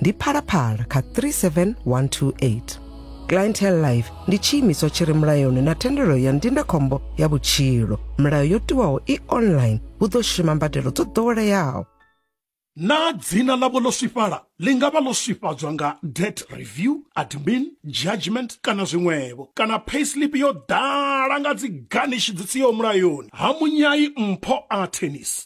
ndi phalaphala kha 37128 clientele life ndi tshiimiswa tshi re mulayoni na thendelo ya ndindakhombo ya vhutshilo milayo yo tiwaho i online hu ḓo shuma mbadelo dzo ḓoweleaho naa dzina ḽavho ḽo swifhala ḽi nga vha ḽo swifhadzwa nga debt review admin judgment kana zwiṅwevho kana payslip yo ḓala nga dzi garnish dzi siho mulayoni ha munyai mpho a tennis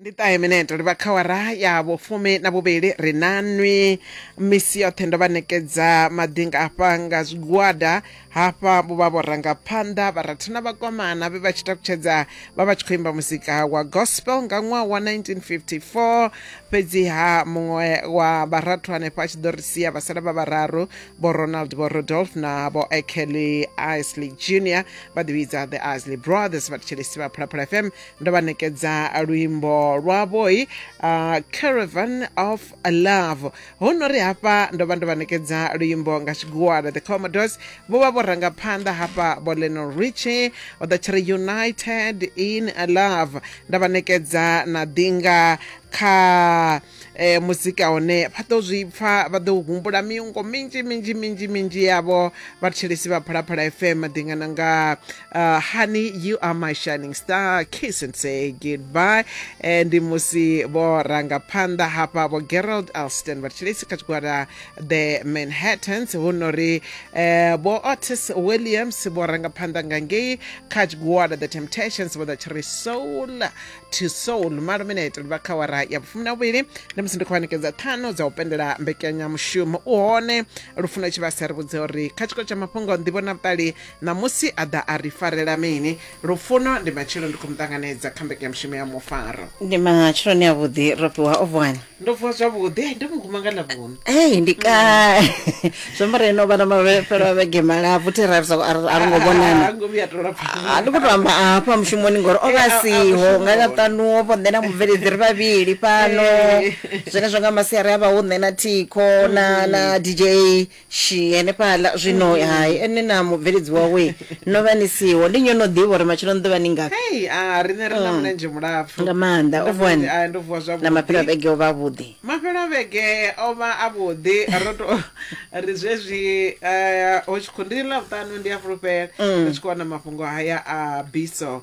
ndi ṱahe mineto ri vha khawara ya vhufumi na vhuvhili ri na nwi misi yoṱhe ndo vha ṋekedza maḓi nga afha nga zwigwada hafha vho vha vho ranga phanḓa vharathu na vhakomana vhe vha tshi takutshedza vha vha tshi khou imba muzika wa gospel nga ṅwaha wa 1954 fhedziha muṅwe wa vharathu hanefha a tshi ḓo ri sia vha sala vha vhararu vho ronald vho rodolf na vho ekelly isley junior vha ḓivhidza the isley brothers vha thetshelesi vha phalaphala fm ndo vha ṋekedza luimbo lwavhoi uh, caravan of love ho no ri hafha ndo vha ndo vha ṋekedza luimbo nga tshigwada the commodores vho vha vho ranga phanḓa hafha vho leno richi o ḓa tshi ri united in love nda vha ṋekedza na ḓinga kha e, muzika hone vha ḓo zwi pfa vha ḓo humbula miungo minzhi minzhi minzhi minzhi yavho vhathetshelesi vha phalaphala fm ḓingana nga uh, honey you are my shining star kiss and say goodbye e, ndi musi vho ranga phanḓa hafha vho gerald alston vhathetshelesi kha tshigwada the manhattans hu no ri eh, vho otis williams vho ranga phanḓa nga ngei kha tshigwada the temptations vho ḓa tshi ri soul to soul maluminate ri vha kha wara ya vhufumi na vhuvhili ndi musi ndi khou vhanekedza ṱhanu dza u pendela mbekanyamushumo u hone lufuno tshi vha sa ri vhudze uri kha tshiko tsha mafhungo nḓivho na vhuṱali ṋamusi a ḓa a ri farela mini lufuno ndi matshelo ndi khou mu ṱanganedza kha mbekanyamushumo ya mufaro ndi matsheloni avhuḓi ro fhiwa ovhwani ndo vuwa zwavhuḓi ndi muguma nga ḽavhunu ei ndi ka zwi amba reno vhana mafhelo a vhege malapfu thi ra sa- a ri- a ri ngo vhonana ngo vhuya to lapfa a ndi khou to amba afha mushumoni ngori o vha Eh, a- a siho nga mushumoni. ḽaṱanu o vho nṋe na mubveledzi ri vhavhili fhano Eh. zwenezwo nga masiari a vha hu nṋe na thikho na na dj shi henefhaḽa zwino hai ene na mubveledzi wawe no vha ni siho ndi nyo no ḓivha uri matshelo ni ḓo vha ni ngafhi hei a riṋe ri na mulenzhe mulapfu Mm. nga maanḓa Ndo u vuwa ni- ah, ndo vuwa na maphelo a zwavhuḓi vhege o vha avhuḓi mafhelo a vhege o vha a vhuḓi ro to ri zwezwi eh, hu tshi khou ndi ḽavhuṱanu ndi a fulufhela ri tshi khou wana mafhungo haya a biso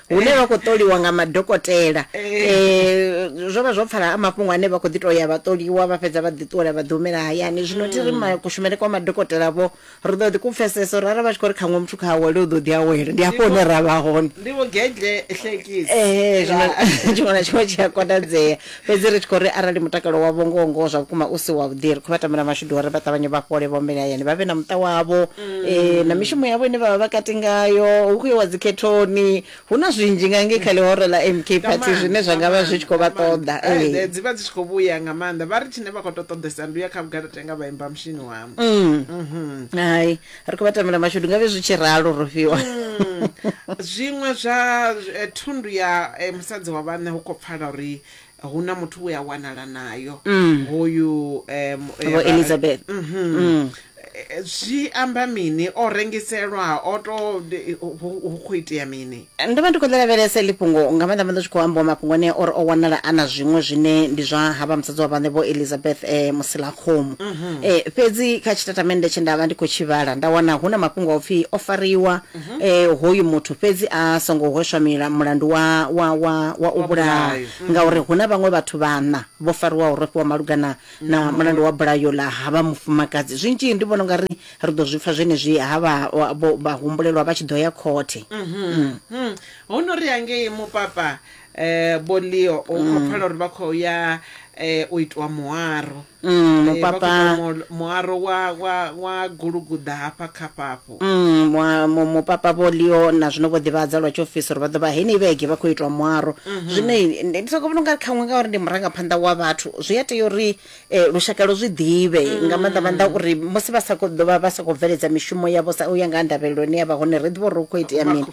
hune vha khou ṱoliwa nga madokotela um zwo vha zwo pfala a mafhungo ane vha khou ḓi tou ya vha ṱoliwa vha fhedza vha ḓi ṱuwela vha ḓi humela hayani zwino thi ri ma- kushumele kwa madokotela vho ri ḓo ḓi ku pfesesa uri arali vha tshi khou ri khaṅwe muthu kha awele u ḓo ḓi awela ndi hafho hune ra vha hone ndi vho gedle hlekisi Eh, zwino tshiṅwe na tshiṅwe tshi a konadzea Fhedzi ri tshi khou ri arali mutakalo wavho ngoho-ngoho zwa vhukuma u si wavhuḓi, ri khou vha tambela mashudu uri vha ṱavhanye vha fhole, vha humbele hayani, vha vhe na muṱa wavho, e, na mishumo yavho ine vha vha vha kati ngayo, hu khou iwa dzikhethoni, hu na zwinzhi nga ngei kha ḽihoro ḽa MK Nga Party maanḓa, zwine zwa nga nga vha zwi maanḓa, tshi khou nga vha maanḓa. ṱoḓa. Hai, Ee. dzi vha dzi tshi khou vhuya nga maanḓa. Vha ri tshine vha khou tou ṱoḓesa ndi u ya kha vhugalatenga vha imba mushinini wa. Hai, ri khou vha tamela mashudu nga vhe zwi tshi ralo ro fhiwa mm. zwiṅwe zwa eh, thundu ya eh, musadzi wa vhanṋe hu khou pfala uri hu na muthu we a wanala nayo mm. hoyu um, vho elizabeth mm -hmm. mm. zwi amba mini o rengiselwa o to hu khou itea mini ndo vha ndi khou ḽi lavhelesa iḽi fhungo nga maanḓa maanḓa tshi khou ambiwa mafhungo ane ori o wanala a na zwiṅwe zwine ndi zwa havha musadzi wa vhaṋe vho elizabeth um eh, musilakhomu um mhm. eh, fhedzi kha tshitatamende tshe nda vha ndi khou tshi vhala nda wana hu na mafhungo a u pfhi o fariwa um hoyu muthu fhedzi a songo hweswa mulandu wa, wa, wa, wa u vhulaha mhm. ngauri hu na vhaṅwe vhathu vhaṋa vho fariwaho rofhiwa malugana na mulandu wa bulayo ḽa havha mufumakadzi zwinzhi ndi vhona u nga ri ri ḓo zwi pfa zwenezwi ha vha wa- vho- vha humbulelwa vha tshi ḓo ya khothe Hmm. hu no ri hangei mupapa eh, vho leo u khou pfala uri vha khou ya eh, u itiwa muaro Mm, Eh, vha khou mupapa- itiwa mu- muaro wa, wa, wa guluguḓa hafha kha fhafhu Mm, mwa- mu- mupapa vho leo na zwino vho ḓivhadza lwa tshiofisi uri vha ḓo vha heneyi vhege vha khou itwa muaro zwine ndi soko vhona ungari khaṅwe ngauri ndi murangaphanḓa wa vhathu zwi a tea uri eh, lushaka lu zwi ḓivhe mm. nga maanḓa maanḓa uri musi vha sa khou ḓovha vha sa khou bveledza mishumo yavho sa u ya nga ha ndavhelelo ine ya vha hone ri ḓivha uri hu khou itea mini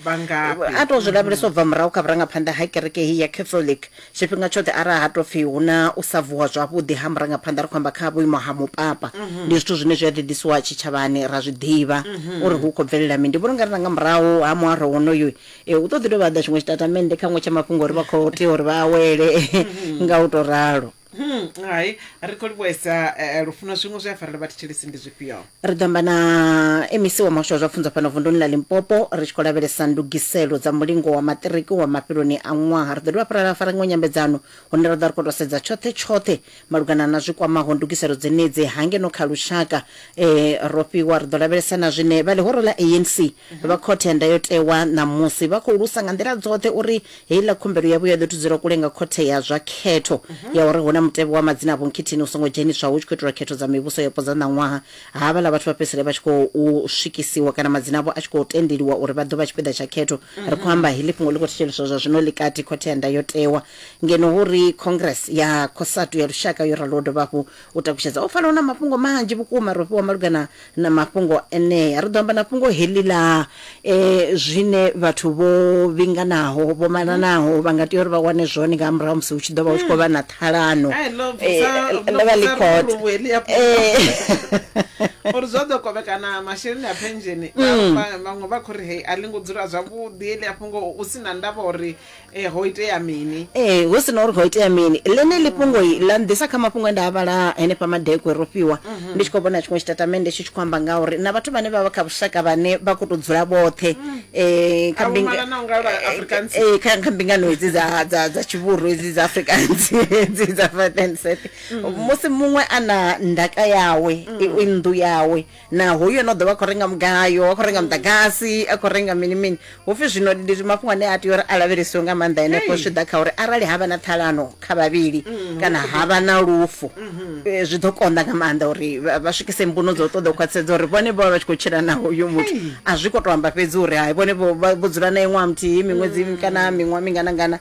a tou zwi lavhelesa u bva murahu kha vhurangaphanḓa ha kereke heyi ya catholic tshifhinga tshoṱhe arali ha tou pfhi hu na u sa vuwa zwavhuḓi ha murangaphanḓa ri khou amba kha vhuimo ha mupapa mhm. ndi zwithu zwine zwi a ḓiḓisiwa tshitshavhani ra zwi ḓivha mhm. uri hu khou bvelela mini ndi vhona ungari na nga murahu ha muaro wonoyu um eh, hu ḓo ḓi dovha ḓa tshiṅwe tshitatamennde kha ṅwe tsha mafhungo uri vha khou tea uri vha awele mhm. nga u tou ralo Hmm, hai ri khou livhuesa eh, lufuno zwiṅwe zwe a farela vhathetshelesi ndi zwifhio ri ḓo amba na mec wa muhasho wa zwa pfunzo fhano vunduni ḽa limpopo ri tshi khou lavhelesa ndugiselo dza mulingo wa maṱiriki wa mafheloni a ṅwaha ri ḓo dovha fhirala fara iṅwe nyambedzano hune ra ḓo ri khou tou sedza tshoṱhe tshoṱhe malugana na zwi kwamaho ndugiselo dzenedzi hangeno kha lushaka um ro fhiwa ri ḓo lavhelesa na zwine vha ḽihoro ḽa anc Vha Khothe ya Ndayotewa ṋamusi vha khou lusa nga nḓila dzoṱhe uri heiḽa khumbelo yavho ya ḓo thudzela kule nga Khothe ya zwa Khetho ya uri hu na mutevhe wa madzina a vhunkhithini u songo dzheniswaho hu tshi khou itelwa khetho dza mivhuso yapo dza ṋaṅwaha, havhaḽa vhathu vha fhedzisele vha tshi khou swikisiwa kana madzina avho a tshi khou tendeliwa uri vha ḓo vha tshipiḓa tsha khetho. Ri khou amba heḽi fhungo ḽi khou thetsheleswa zwa zwino ḽi kati Khothe ya Ndayotewa ngeno hu ri Congress ya Cosatu ya Lushaka yo raloho dovha hafhu u takutshedza. Ho pfala hu na mafhungo manzhi vhukuma ro fhiwa malugana na mafhungo enea. Ri ḓo amba na fhungo heḽi ḽa e, zwine vhathu vho vhinganaho vho malanaho vha nga tea uri vha wane zwone nga murahu musi hu tshi ḓo vha hu tshi khou vha na ṱhalano Ai, ḽo bvisa- Eh, ḽo ḽo vha ḽi bvisa khothe. luluvhu heḽi ya Eh. uri zwo ḓo kovhekana masheleni a pensheni vha- vha- vhaṅwe vha khou ri hei a ḽi ngo dzula zwavhuḓi heḽi a fhungo u si na ndavha uri e ho itea mini ee hu si na uri ho itea mini ḽene ḽifhungoi ḽa nḓisa kha mafhungo e nda a vhala henefha madekwe ro fhiwa ndi tshi khou vhona tshiṅwe tshitatamennde tshi tshi khou amba nga uri na vhathu vhane vha vha kha vhushaka vhane vha khou tou dzula vhoṱhe um kha Avho mbinga- malanaho nga vha Afrikaans. Eh, eh, kha kha mbingano hedzi dza dza dza tshivhuru hedzi dza afrikaans hedzi dza fatenset musi muṅwe a na ndaka yawe i i nnḓu yawe na hoyu ano ḓovha khou renga mugayo a khou renga muḓagasi a khou renga mini mini hupfi zwino ndi mafhungo ane a tea uri a lavhelesiwe nga maanḓa henefho zwi ḓa kha uri arali havha na ṱhalano kha vhavhili mm, kana havha na lufu mm-hmm. eh, zwi ḓo konḓa nga maanḓa uri vha swikise mbuno dzo ṱoḓa u khwaṱhisedza uri vhone vho vha vha tshi khou tshila na hoyu muthu a zwi kho to amba fhedzi uri hai vhone vho dzula nae ṅwaha muthihi miṅwedzi mm. kana miṅwaha minganangana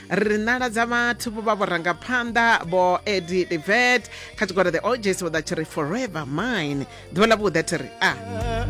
ri nala dza vhathu vho vha vhurangaphanḓa vho edi devet kha tshigwada the oges vho ḓa tshi ri forever mine ḓuvha ḽa vhuḓa thi ri a ah.